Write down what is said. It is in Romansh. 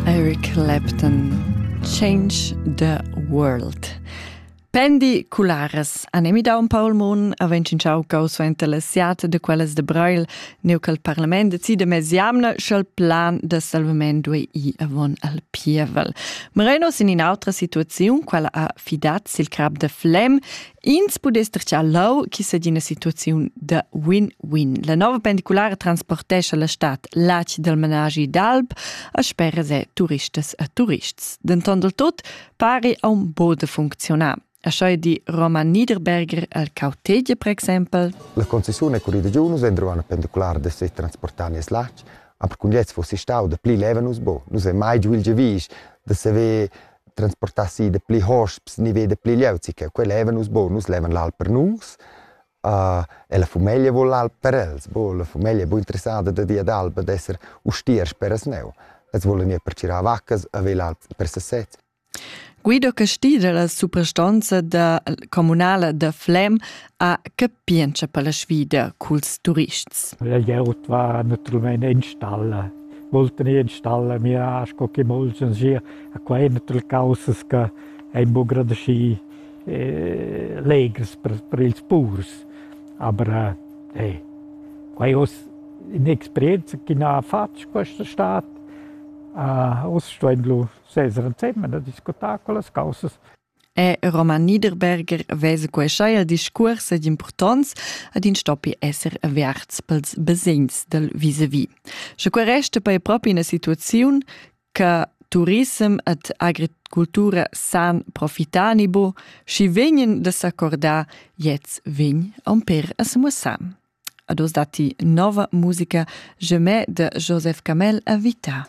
Eric Clapton Change the World Pendi cularas anemi da un Paul Moon avent in ciao cau suenter la siata de quellas de Brail neu cal parlament decide mes jamna sch'el plan de salvament due i avon al pievel. Moreno sin in autra situaziun quella ha fidat sil crab de Flem Ins pudess tracciar lau chi sa d'ina situaziun da win-win. La nova pendiculara transportescha la stad l'ac dal managi d'alp a speras e turistas e turists. Denton del tot pari a un bod de funzionar. Așa di Roman Niederberger al Cautegia, per exempel. La concessione con i digiunus entro una pendicolare de se transportani es lac, aber kun jetzt fuss ich stau de pli leva nus bo, nus ei mai giu il gevis de se ve transportassi de pli hosps ni ve de pli glieud si che quel leva nus bo nus levan l'alp per nus uh, e la fumeglia vuol l'alp per els bo la fumeglia è bu interessada da dia d'alba d'esser ustiers per as neu es vuol gnir per cirar vaccas a ve l'alp per sesez Guido Casti dalla suprastanza da communala da Flem ha capientscha per la sfida culs turists. La glieud va naturalmein enstalla. Volten ei enstalla, mira sco che molts sir a quai ina tala caussas che ein buca grad aschi eh, legers per, per ils purs. Aber eh, hey, quai oz un'esperienza che ha fatg questa estate. Uh, oz stuein lu seser ensemen e discutar con las causas. E Roman Niederberger vese queschai al discuors ed impurtonz ad in stoppi esser averts pels besegns del vis-a-vis. Sche que resta per propi ina situaziun che turissem ed agricultura san profitar ni bo, schi vegnen da s'accordar jetzt vegn on per a semussam. Ados datti nova musica Gemè de Joseph Camel a vita.